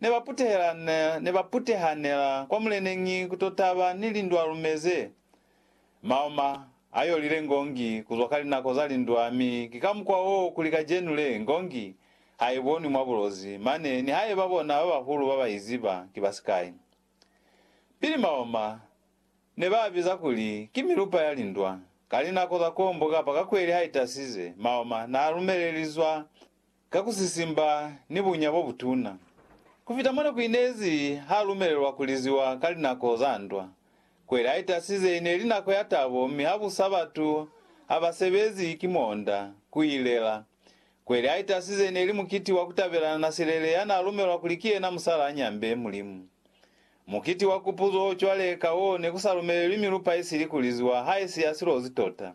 ne ba putehelana, ne ba putehanela kwa muleneñi ku to taba ni lindwalume ze maoma a yolile ngongi ku zwa ka linako za lindwa, mi ki ka mukwa wo kuli kacenu le ngongi ha i bonwi mwa bulozi, mane nihaiba bona ba bahulu ba ba i ziba ki ba sikai. Pili maoma ne ba a biza kuli ki milupa ya lindwa. Ka linako za kombo kapa ka kweli ha i tasize, maoma n'a lumelelizwa ka ku sisimba ni bunya bo butuna, ku fita mona ku inezi ha lumelelwa ku liziwa ka linako za ndwa. Kweli a itasize i ne li nako ya tabo mi ha busa batu ha ba sebezi ki muonda ku i lela. Kweli a itasize i ne li mukiti wa ku tabelana na Silele ya n'a lumelwa kuli ki yena musala a nyambe Mulimu. Mukiti wa kupuzo cwale ka wo ne ku sa lumelelwi milupa isili ku liziwa ha isi ya silozi tota.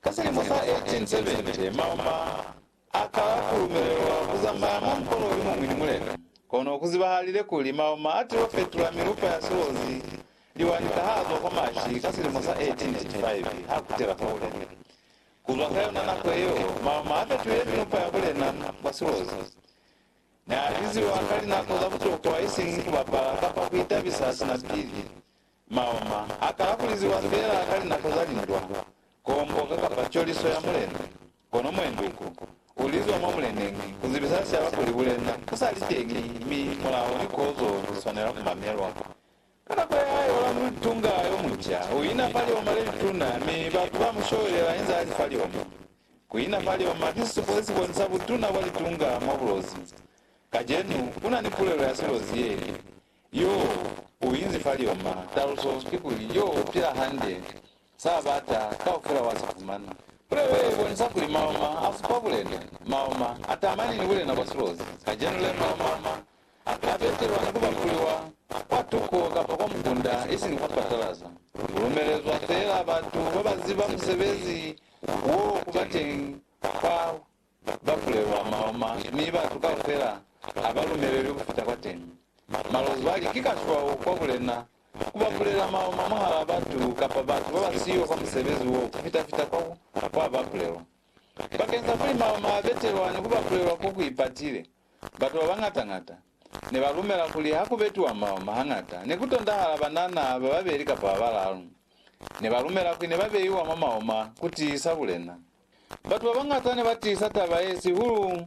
Ka silimo sa 1870, Mauma a kala ku lumelelwa ku zamaya mwa mukolo yo muñwi ni Mulena. Kono ku zibahalile kuli Mauma a til'o fetula milupa ya silozi liwani ka h'a zwa kwa Mashi ka silimo sa 1885 h'a kutela kwa Bulena. Ku zwa ka yona nako yeo, Mauma a fetulile milupa ya Bulena kwa silozi. Ne a biziwa ka linako za butokwa isiñi ku bapala kapa ku itabisa sina pili Maoma a kala ku liziwa feela ka linako za lindwa, koomboka kapa coliso ya mulena. Kono mwenduku u lizwa mwa muleneñi ku zibisa sicaba kuli bulena bu sa li teñi mi mulao ni kozo li swanela ku mamelwa. Ka nako ya hae Olamu Litunga yo munca u ina fa lioma le lituna mi batu ba mu showelela inze a li fa lioma. Ku ina fa lioma ki sisupo se si bonisa butuna bwa litunga mwa bulozi. Kacenu ku na ni pulelo ya silozi ye Yo u inzi fa lioma. Taluso kikuli, yo u pila hande, sa bata kaufela wa si fumana. Puleo ye ibonisa kuli maoma a supa bulena, maoma a tamani ni bulena bwa silozi. Kacenu le, maoma a ka betelwa ni ku bambuliwa kwa tuko kapa kwa mukunda, isini kwa patalaza. Ku lumelezwa feela batu ba ba ziba musebezi wo ku ba teñi kwa ba bulelwa maloma mi batu kaufela ha ba lumelelwi ku fita kwateñi. Malozwali ki kaswao kwa bulena ku ba bulela maloma mwahal'a batu kapa batu ba ba siyo kwa musebezi wo ku fita-fita kwa kwa ba bulelwa. Bakeng sa kuli maloma a betelwa ni ku ba bulelwa ko ku ipatile, batu ba bañata-ñata ne ba lumela kuli ha ku betiwa maloma hañata ne ku tondahala banana ba babeli kapa ba balalu. Ne ba lumela kuli ne ba beiwa mwa maloma ku tiisa bulena. Batu babañata nebatiisa taba yesihulu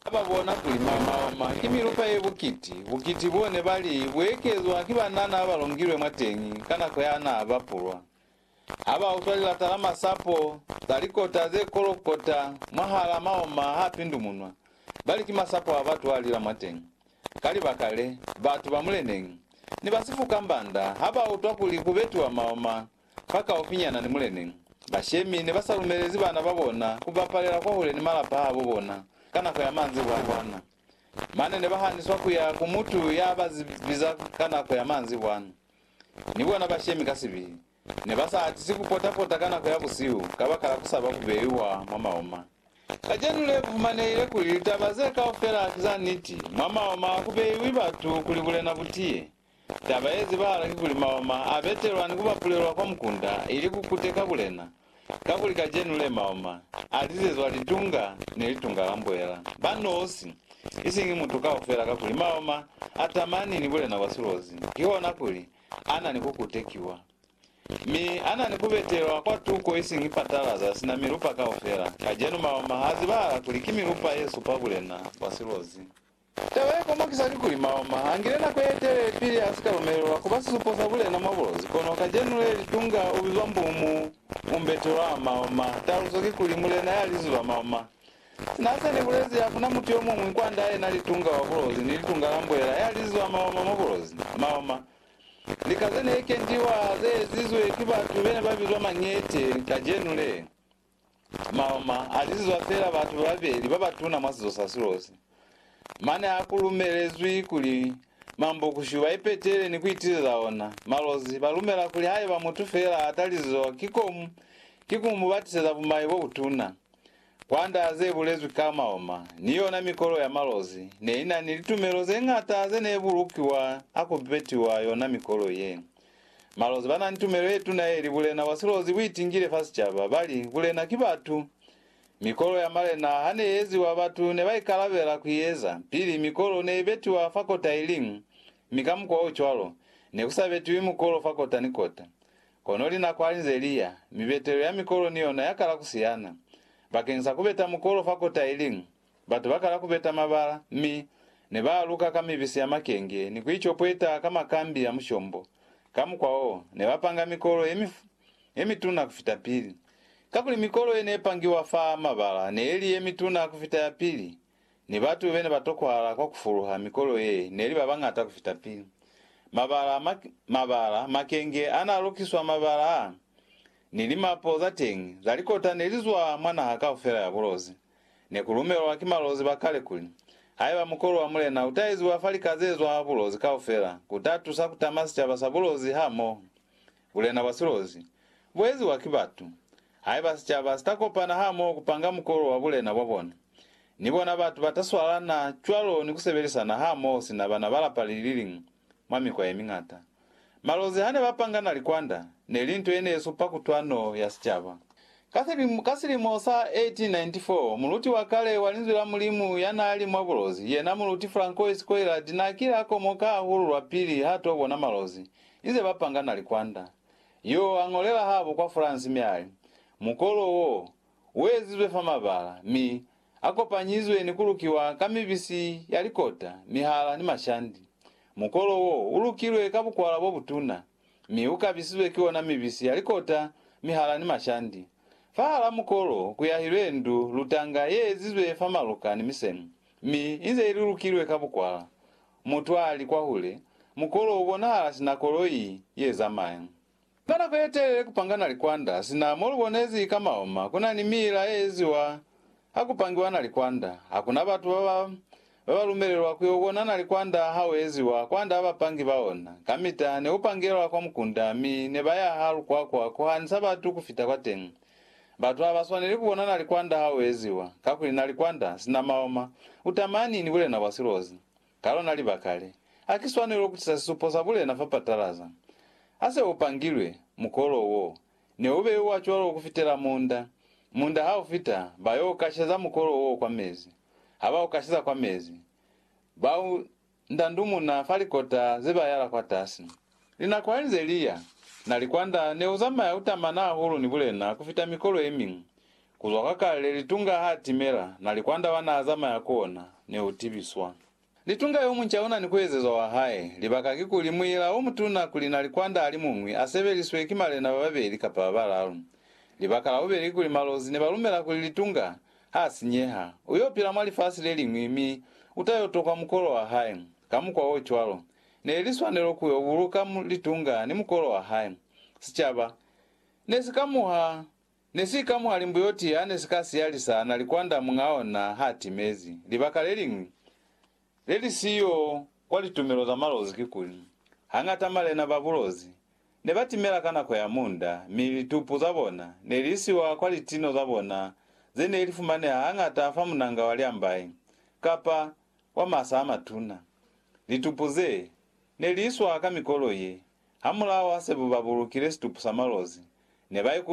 hababona kuli mamaoma ki milupa ye bukiti, bukiti bo nebali buekezwa ki banana babalongilwe mwateñi ka nako yanaa bapulwa. Habautwa lilata la masapo, za likota ze kolokota mwahalaa maoma haa pindumunwa, bali ki masapo abatu alila mwateñi. Ka libaka le, batu ba muleneñi, ni ba sifuka mbanda habautwa kuli kubetiwa maoma fakaufinyana ni Mulena. Bashemi ne ba sa lumelezi bana ba bona ku bapalela kwahule ni malapa a bo bona ka nako ya manzi bwana-bwana. Mane ne ba haniswa ku ya ku mutu ya ba biza ka nako ya manzi bwana. Ni bona bashemi ka sibili ne ba sa atisi ku pota-pota ka nako ya busihu kabakala ku saba ku beiwa mwa maoma. Kacenu le ku fumanehile kuli litaba ze kaufela ki za niti, mwa maoma a ku beiwi batu kuli bulena bu tiye. Taba ye zibahala kikuli maoma a betelwa ni ku bapulelwa kwa mukunda ili ku kuteka bulena, kakuli kacenu le maoma a lizezwa litunga ni litunga la mbuela, ba nosi, isiñi mutu kaufela kakuli maoma a tamani ni bulena bwa silozi, kihona kuli a na ni ku kutekiwa. Mi a na ni ku betelwa kwa tuko isiñi patalaza sina milupa kaufela, kacenu maoma a zibahala kuli ki milupa ye supa bulena bwa silozi. Taba ye komokisa kikuli Maoma angile nako ye telele pili a si ka lumelelwa kuba sisupo sa bulena mwa bulozi, kono kacenu le litunga ubizwa Mbumu Umberto Rao Maoma, taluso kikuli mulena ya liziba Maoma. Sina se ni bulezi hakuna mutu yomuñwi kwand'a yena litunga wa bulozi ni litunga la mbuela ya liziba Maoma mwa bulozi. Maoma, lika ze ne kendiwa ze ezizwe ki batu bene ba bizwa Mañete kacenu le, Maoma a lizizwa feela batu babeli ba batuna mwa sizo sa Silosi. Mane ha ku lumelezwi kuli Mambokushu ba ipetele ni ku itileza ona, Malozi ba lumela kuli haiba mutu feela a ta lizizoa ki komu, ki ku mu batiseza bumai bo butuna. Kwanda ze bulezwi ka maoma, ni yona mikolo ya Malozi ne i na ni litumelo ze ñata ze ne bulukiwa ha ku betiwa yona mikolo ye. Malonzi ba na ni tumelo ye tuna ye li, Bulena bwa silozi bu itingile fa sicaba. Ba li, Bulena ki batu. Mikolo ya malena ha ne i eziwa, batu ne ba ikalabela ku i eza. Pili, mikolo ne i betiwa fa kota i liñwi, mi ka mukwa o cwalo, ne ku sa betiwi mukolo fa kota ni kota. Kono linako ha li nze li ya, mibetelo ya mikolo ni yona ya kala ku siyana. Bakeñisa ku beta mukolo fa kota i liñwi, Batu bakala kubeta mabala, mi nebaaluka ka mibisi ya makenge ni kuicopweta ka makambi a mushombo. Ka mukwa wo, nebapanga mikolo yemituna kufita pili. Kakuli mikolo yenepangiwa fa mabala neeli yemituna kufita ya pili, ni batu benebatokwahala kwa kufuluha mikolo ye neli babañata kufita pili. Mabala, mabala, makenge anaalukiswa mabala a, ni limapo zateñi zalikota nelizwa mwa naha kaufela ya bulozi. Ne ku lumelwa ki malozi ba kale kuli, Haiba mukolu wa mulena u ta eziwa fa lika ze zwa bulozi kaufela, ku ta tusa ku tama sicaba sa bulozi hamoho. Bulena bwa silozi, bu eziwa ki batu. Haiba sicaba si ta kopana hamoho ku panga mukolu wa bulena bwa bona, ni bona batu ba ta swalana cwalo ni ku sebelisana hamoho sina bana ba lapa li li liñwi. mwa mikwa ye miñata. Malozi ha ne ba pangana likwanda, ne li nto ye ne supa kutwano ya sicaba. Ka selimo, ka silimo sa 1894, muluti wa kale wa Linzwi la Mulimu ya naa li mwa bulozi, yena Muluti Francois Coillard naa kile a komoka hahulu lwapili ha to bona malozi inze ba pangana likwanda. Yo a ñolela habo kwa France mi a li, Mukolo wo, uezizwe fa mabala, mi akopanyizwe ni kulukiwa ka mibisi ya likota, mihala ni mashandi. Mukolo wo ulukilwe ka bukwala bobutuna, mi ukabisizwe ki ona mibisi ya likota, mihala ni mashandi. Fahal'a mukolo kuyahilwe ndu lutanga yeezizwe fa maluka ni misemu, mi inze ilulukilwe ka bukwala. Mutu ali kwahule, mukolo ubonahala sina koloi yezamaya. Ka nako ye telele ku panga na likwanda, sina mo lu bonezi ka maoma ku na ni miila ye eziwa ha ku pangiwa na likwanda. Ha ku na batu ba ba ba ba lumelelwa ku yo bona na likwanda ha u eziwa kwand'a bapangi ba ona. Kamita ne u pangelwa kwa mukunda mi ne ba ya ha lukwakwa ku hanisa batu ku fita kwateñi. Batu ha ba swaneli ku bona na likwanda ha u eziwa, kakuli na likwanda, sina maoma, u tamani ni bulena bwa silozi. Ka lona libaka le, ha ki swanelo ku tisa sisupo sa bulena fa patalaza. Ha se u pangilwe, mukolo wo ne u beuwa cwalo ku fitela munda. Munda ha u fita, ba y'o kasheza mukolo wo kwa mezi. Ha ba u kasheza kwa mezi, ba u ndandumuna fa likota ze ba yala kwatasi. Linako halinze liya, na likwanda neuzamaya utamana hahulu ni bulena kufita mikolo yemiñwi. Kuzwa kwa kale litunga haatimela, na likwanda wanaazamaya ku ona neutibiswa. Litunga yomunca unani kuezezwa wahae, libaka kikuli muila omutuna kuli na likwanda alimuñwi asebeliswe ki malena bababeli kapa babalalu. Libaka labubeli kikuli malozi nebalumela kuli litunga haasinyeha, uyopila mwa lifasi leliñwi mi utayotokwa mukolo wahae. Ka mukwa ocwalo, ne li swanelo ku yo buluka litunga ni mukolo wa hae. Sicaba ne si ka muha, ne si ka muha limbuyoti ya ne si ka siya li sa na likwanda muñ'a ona h'a timezi. Libaka le liñwi le li siyo kwa litumelo za malozi kikuli, hañata malena ba bulozi ne ba timela ka nako ya munda, mi litupu za bona ne li isiwa kwa litino za bona ze ne li fumaneha hañata fa munanga wa liambayi kapa wa masa a matuna. Litupu ze ne li iswa ka mikolo ye, hamulaho ha se ba bulukile situpu sa malozi, ne ba ikutwa